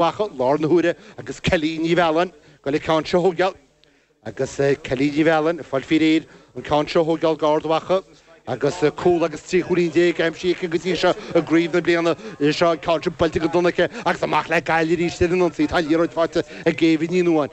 Mhacha, i láthair na huaire agus Kelly Ní Mhealláin, ag goil an ceann seo a thógáil agus Kelly Ní Mhealláin, ag fáil faoi réir an ceann seo a thógáil do Ard Mhacha agus cúl agus trí chúilín déag aimsithe aici go dtí seo i gcraobh na bliana seo an ceann sin buailte go dona aici agus amach le Gaillimh arís ar an ionsaí tá an liathróid faighte ag Éabha Ní Nuáin,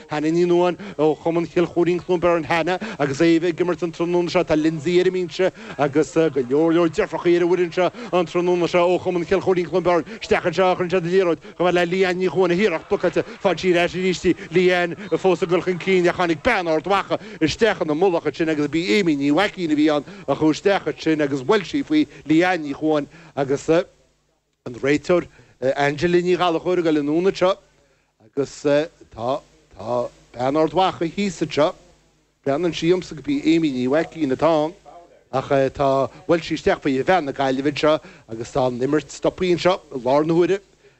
Hannah Ní Nuáin ó Chumann Chill Chóirín, Cluain Beirn, Hannah agus Éabha ag imirt an tráthnóna seo, tá Lindsay ar an mbinse agus go leor leor deirfiúrachaí ar an bhfoireann seo an tráthnóna seo ó Chumann Chill Chóirín, Cluain Beirn. Isteach anseo a chuireann siad an liathróid chomh fada le Leanne Ní Chuáin, a hiarracht blocáilte, faigheann sí ar ais arís di, Leanne fós ag dul chun cinn ach tháinig bean Ard Mhacha isteach ina mullach ansin agus ba í Aimee Ní Mhaicín a bhí ann a chuaigh isteach ansin agus bhuail sí faoi Leanne Ní Chuáin agus an réiteoir Angela Ní Ghallachóir ag dul anonn anseo agus tá tá tá bean Ard Mhacha thíos anseo breathnaíonn sé domsa gurb í Aimee Ní Mhaicín atá ann ach tá bhuail sí isteach faoi bhean na Gaillimhe anseo agus tá an imirt stoptha anseo i láthair na huaire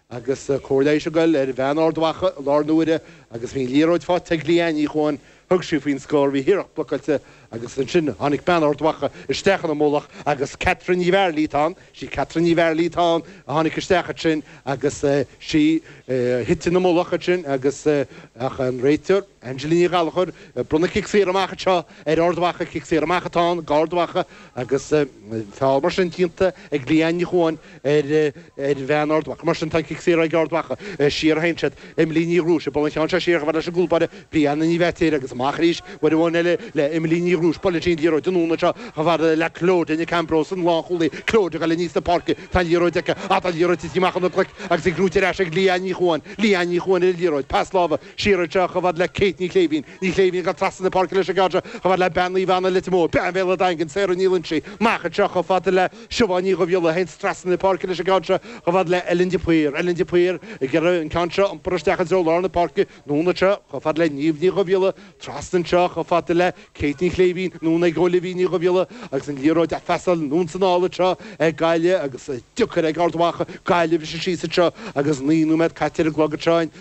agus cóir leighis ag dul ar bhean Ard Mhacha i láthair na huaire agus bhí an liathróid faighte ag Leanne Ní Chuáin Thug sí faoin scór, bhí a hiarracht blocáilte agus ansin tháinig bean Ard Mhacha isteach ina mullach agus Catherine Ní Mhearlaigh atá ann, sí Catherine Ní Mhearlaigh atá ann, tháinig isteach ansin agus sí a thit ina mullach ansin agus ach an réiteoir, Angela Ní Ghallachóir, ag bronnadh cic saor amach anseo ar Ard Mhacha, cic saor amach atá ann d'Ard Mhacha. Agus feall mar sin déanta ag Leanne Ní Chuáin ar bhean Ard Mhacha. Mar sin, tá cic saor ag Ard Mhacha. Siar a théann siad. Emily Ní Dhrúis ag bualadh an ceann seo siar chomh fada leis an gcúl báire Brianna Ní Bheirtéir agus amach arís uair amháin eile le Emily Ní Dhrúis. Buaileann sí an liathróid anonn anseo chomh fada le Clodagh Nic Ambróis, an lánchúlaí. Clodagh ag dul aníos na páirce. Tá an liathróid aici. Á, tá an liathróid tite amach óna glaic agus í gnóite ar ais ag Leanne Ní Chuáin. Leanne Ní Chuáin ar an liathróid. Pas láimhe. Siar anseo chomh fad le Kate Ní Shléibhín. Ní Shléibhín ag dul trasna na páirce leis an gceann seo, chomh fada le bean Naomh Anna Leitir Móir, Bean Bhéal an Daingin, Sarah Ní Loingsigh, amach anseo chomh fada le Siobhán Ní Dhubhghiolla a théanns trasna na páirce leis an gceann seo, chomh fada le Ellen de Paor, Ellen de Paor ag iarraidh an ceann seo a iompar isteach i dtreo lár na páirce, anonn anseo chomh fada le Niamh Ní Dhubhghiolla, trasna anseo chomh fada le Kate Ní Shléibhín, anonn ag Olivia Ní Dhubhghiolla agus an liathróid á phasáil anonn is anall anseo ag Gaillimh agus é deacair ag Ard Mhacha, Gaillimh, leis an síos anseo agus naoi nóiméad caite ar an gclog anseo in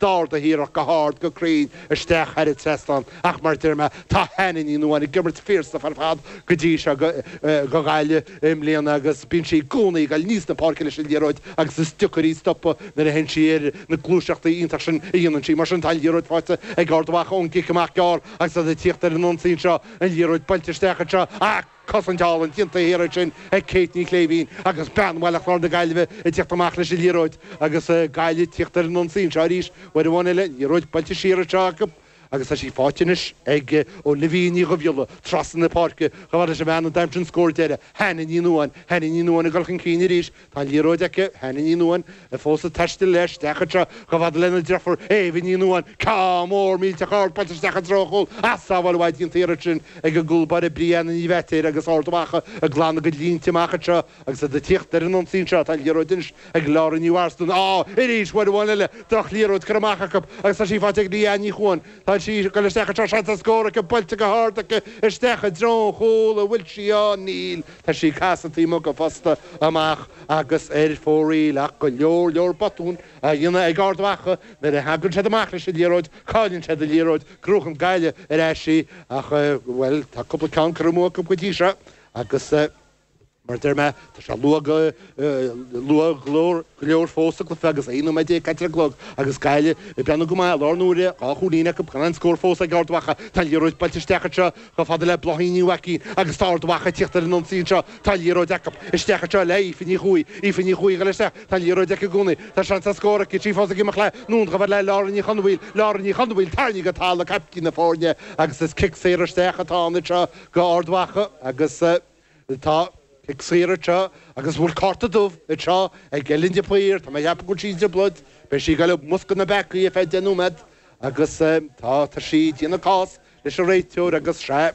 D'ardaigh iarracht go hard go cruinn isteach thar an trasnán, ach mar deir mé, tá Hannah Ní Nuadháin ag imirt phiarsafa ar fad go dtí seo do Ghaillimh i mbliana agus bíonn sí i gcónaí ag dul aníos na páirce leis an liathróid agus is deacair í stopadh nuair a théann sí ar na gluaiseachtaí iontach sin a dhéanann sí. Mar sin, tá an liathróid faighte ag Ard Mhacha ón gcic amach gearr agus iad ag tíocht ar an ionsaí anseo, an liathróid buailte isteach anseo ach. Cosaint álainn déanta thiar ansin ag Kate Ní Shléibhín agus Bean Bhaile Chláir na Gaillimhe ag tíocht amach leis an liathróid agus Gaillimh ag tíocht ar an ionsaí anseo arís uair amháin eile, liathróid buailte siar anseo acu agus tá sí faighte anois ag Olivia Ní Dhubhghiolla, trasna na páirce, chomh fada leis an mbean a d'aimsigh an scór deiridh, Hannah Ní Nuadháin, Hannah Ní Nuadháin ag dul chun cinn arís Tá liathróid aici, Hannah Ní Nuáin, í fós ag taisteal léi isteach anseo chomh fada lena deirfiúr, Éabha Ní Nuáin, ceann mór millteach ard buailte isteach i dtreo an chúil ach sábháil mhaith déanta ansin ag an gcúlbáire Brianna Ní Bheirtéir agus Ard Mhacha ag glanadh a gcuid línte amach anseo agus iad ag tíocht ar an ionsaí anseo. Tá liathróid anois ag Laura Ní Mharsden, á, arís, uair amháin eile, drochliathróid curtha amach acu agus tá sí faighte ag Leanne Ní Chuain, tá sí ag goil isteach anseo, seans ar scór aici, buailte go hard aici isteach i dtreo an chúil, an bhfuil sí ann? Níl. Tá sí casta taobh amuigh den phosta amach agus ar fóraoil ach go leor leor botún á dhéanamh ag Ard Mhacha nuair a thagann siad amach leis an liathróid, cailleann siad an liathróid, crochann Gaillimh ar ais í ach, bhuel, tá cúpla ceann curtha amú acu go dtí seo agus mar a deir mé, tá sé luath go. Luath go leor fós sa cluiche agus aon nóiméad déag caite ar an gclog agus Gaillimh ag breathnú go maith i láthair na huaire, dhá chúilín acu gan aon scór fós ag Ard Mhacha. Tá an liathróid buailte isteach anseo chomh fada le Bláithín Ní Mhaicín agus tá Ard Mhacha ag tíocht ar an ionsaí anseo, tá an liathróid acu, isteach anseo le Aoife Ní Chuaigh, Aoife Ní Chuaigh a chuir isteach, tá an liathróid aici i gcónaí, tá seans ar scór aici, í fós ag imeacht léi, anonn uaithi le Lauren Ní Chonmhaoil, Lauren Ní Chonmhaoil tarraingthe go talamh, caiptín na foirne agus is cic saor isteach atá ann anseo go Ard Mhacha agus. Tá cic saor anseo agus bhfuil cárta dubh anseo ag Ellen de Paor, tá mé a cheapadh go bhfuil sí i dtrioblóid, beidh sí ag dul i mbosca na bpeacaí ar feadh deich nóiméad agus tá sí ag déanamh cás leis an réiteoir agus sea,